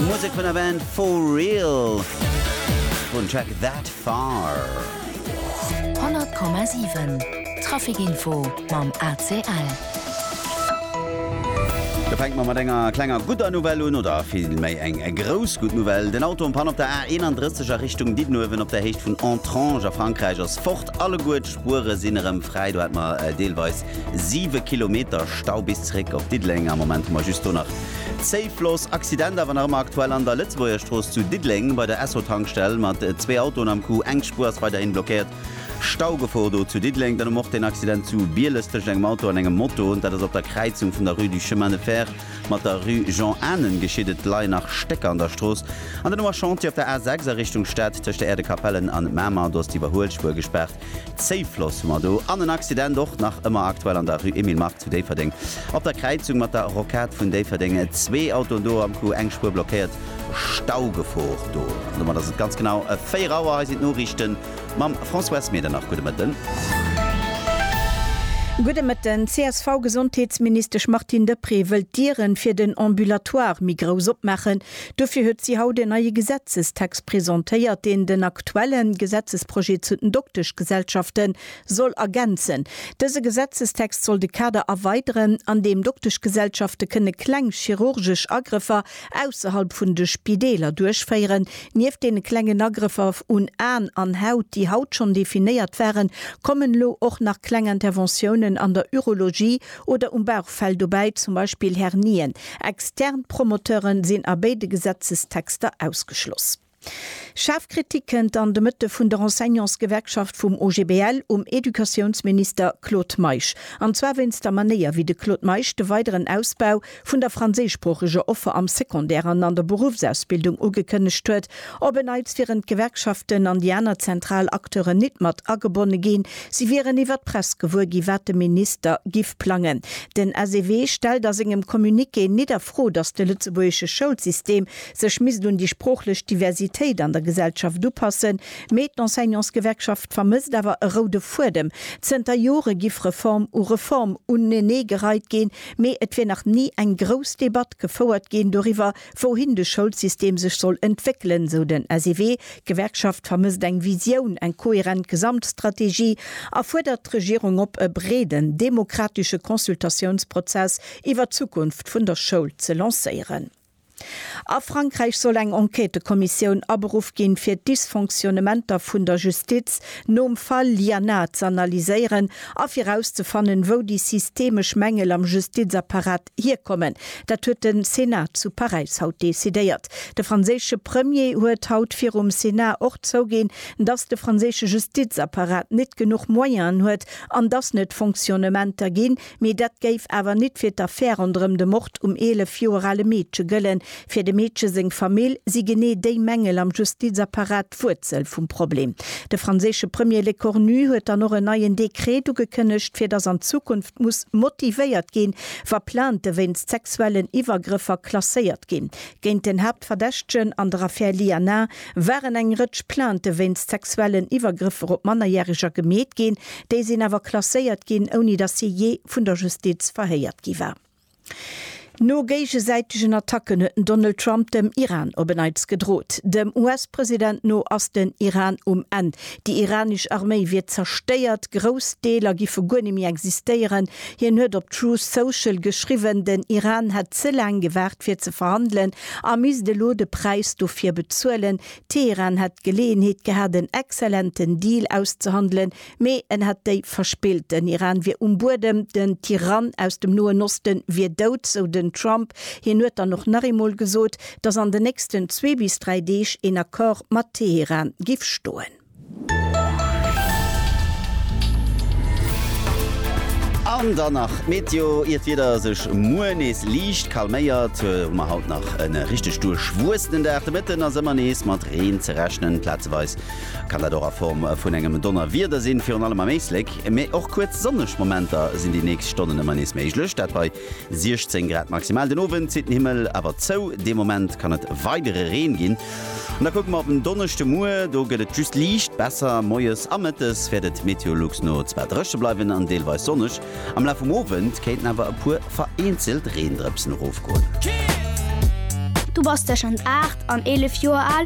Musek vun der Band For Real vun Track That Far. 100,7 Traficinfo mam ACL. Da fänke mer mat enger klenger gudder Nouvelle un, oder vill méi eng grouss gutt Nouvelle. Den Auto am Pann op der A 31 a Richtung Diddenuewen op der Héicht vun Entrange a Frankräich ass fort. Alleguer d'Spuere sinn erëm fräi, do hat mer deelweis Siwe Kilometer Stau bis zeréck op Diddeleng. Am Moment hu mer just do nach Zéif los. Accident awer nach ëmmer aktuell an der Lëtzebuergerstrooss zu Diddeleng bei der Esso-Tankstell mat zwee Autoen am Coup. Eng Spuer ass weiderhin blockéiert. Staugefor do zu Diddeleng. Dann hu mer och deen Accident zu Bieles tëschent engem Auto an engem Moto. Dat ass op der Kräizung vun der Rue du Chemin de Fer mat der Rue Jean Anen geschitt. Et leien nach Stécker an der Strooss. An dann hu mer Chantier op der A6 a Richtung Stad tëscht der Äerdekapellen an Mamer. Do ass d'Iwwerhuelspuer gespaart. Safe Loss hu mer do an en Accident och nach ëmmer aktuell an der Rue Emile Mark zu Déifferdeng op der Kräizung mat der Rocade vun Déifferdeng. Zwee Autoen do am Coup, eng Spuer blockéiert, Staugefor do. An domat ass et ganz genau 4 Auer. Hei sinn d'Noriichten mam François S. Medernach. Gudde Mëtten. Gudde Mëtten. D'CSV-Gesondheetsministesch Martine Deprez wëllt d'Dieren fir den Ambulatoire méi grouss opmaachen, Dofir huet si haut en neie Gesetzestext presentéiert, deen den aktuelle Gesetzesprojet zu den Dokteschgesellschafte soll ergänzen. Dëse Gesetzestext soll de Kader erweideren, an deem Dokteschgesellschafte kënne kleng chirurgesch Agrëffer ausserhalb vun de Spideeler duerchféieren. Nieft deene klengen Agrëffer un Aen an Haut, déi haut schonn definéiert waren, kommen elo och nach kleng Interventiounen an der Urologie, Oder um Bauchfell dobäi zum Beispill Hernien. Extern Promoteure sinn a béide Gesetzestexter ausgeschloss. Schaarf Kritik kënnt an de Mëtte vun der Enseignantsgewerkschaft vum OGBL um Educatiounsminister Claude Meisch. An zwar wéinst der Manéier, wéi de Claude Meisch de weideren Ausbau vun der franséischsproocheger Offer am Secondaire an an der Beruffsausbildung ugekënnegt huet. Op en Neits wieren d'Gewerkschaften an déi aner zentral Acteuren nit mat agebonne ginn. Si wieren iwwer d'Press gewuer ginn, wat de Minister giff plangen. Den SEW stellt a sengem Communiqué nit a Fro, datt de lëtzebuergesche Schoulsystem sech misst un déi sproochlech Diversitéit an der Gesellschaft upassen, mee d'Enseignantsgewerkschaft vermësst awer e roude Fuedem. Zënter Jore giff Reform u Reform unenee gereit ginn. Mee et wier nach ni eng grouss Debatt gefouert ginn doriwwer, wouhin de Schoulsystem sech soll entwéckelen, sou den SEW. D'Gewerkschaft vermësst eng Visioun, eng kohärent Gesamtstrategie a fuerdert d'Regierung op, e breeden demokratesche Consultatiounsprozess iwwer d'Zukunft vun der Schoul ze lancéieren. A Frankräich soll eng Enquêtekommissioun aberuff ginn, fir d'Dysfonctionnementer vun der Justiz nom Fall Lianna z'analyséieren a fir rauszefannen, wou déi systemesch Mängel am Justizapparat hierkommen. Dat huet de Senat zu Paräis haut decidéiert. De franséische Premier huet haut virum Senat och zouginn, dass de franséische Justizapparat net genuch Moyenen huet an dass net Fonctionnementer ginn, Mee dat géif awer nit fir d'Affär ronderëm de Mord um 11 Joer ale Meedche gëllen. Fir dem Meedche seng Famill si genee déi Mängel am Justizapparat d'Wuerzel vum Problem. De franséische Premier Lecornu huet dann och en neien Dekret ugekënnegt, fir datt an Zukunft muss motivéiert ginn, wa Plainte wéinst sexuellen Iwwergrëffer klasséiert ginn. Géint den Haaptverdächtegen an der Affär Lianin waren eng Rëtsch Plainte wéinst sexuellen Iwwergrëffer op Mannerjäreger gemeet ginn, déi sinn awer klasséiert ginn, ouni datt hie jee vun der Justiz verhéiert gi war. No géigesäitegen Attacken huet den Donald Trump dem Iran op en Neits gedrot. Dem US-President no ass den Iran um Enn. Déi iranesch Arméi wier zerstéiert, grouss Deeler giffe guer net méi existéieren. Hien huet op Truth Social geschriwwen, den Iran hätt ze laang gewaart fir ze verhandelen, A misst elo de Präis dofir bezuelen. Teheran hätt d'Geleeënheet gehat en exzellenten Deal auszehandelen, mee en hätt déi verspillt. Den Iran wier um Buedem, den Tyrann aus dem Noen Oste wier dout, sou den Trump. Hien huet dann och nach eemol gesot, datt an den nächsten zwee bis dräi Deeg een Accord mat Teheran giff stoen. An dann nach d'Meteo, Ier d'Wieder sech muer nees liicht calméiert, hu mer haut nach e richteg duerchwuessenen Dag. De Mëtten ass ëmmer nees mat Reen ze rechnen, plazeweis kann dat och a Form vun engem Donnerwieder sinn, virun allem am Éislek. Mee och kuerz sonneg Momenter sinn déi nächst Stonnen ëmmer nees méiglech, dat bei 16 Grad maximal. Den Owend zitt den Himmel awer zou, dee Moment kann et weidere Reen ginn. An da kucke mer op den Donneschde muer, do gëtt et just liicht besser. Moies a mëttes wäert et Meteolux no zwar dréche bleiwen an deelweis sonneg, am Laf vum Owend kéinten awer e puer vereenzelt Reendrëpsen erofgoen. Du bass tëschent 8 an 11 Joer al?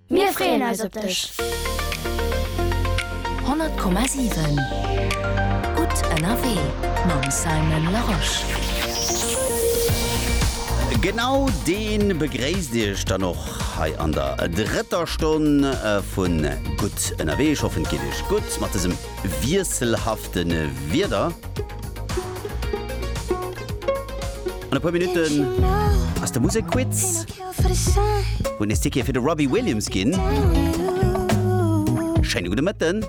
Mir freeën eis op dech! 100,7 Gutt ënnerwee mam Simon Larosche. Genau dee begréisst iech dann och hei an der drëtter Stonn vu Gutt ënnerwee. Ech hoffen et geet iech gutt mat dësem wiesselhafte Wieder. An e puer Minutten ass de Musekquiz, wou nees Tickete fir de Robbie Williams ginn. Schéine gudde Mëtten.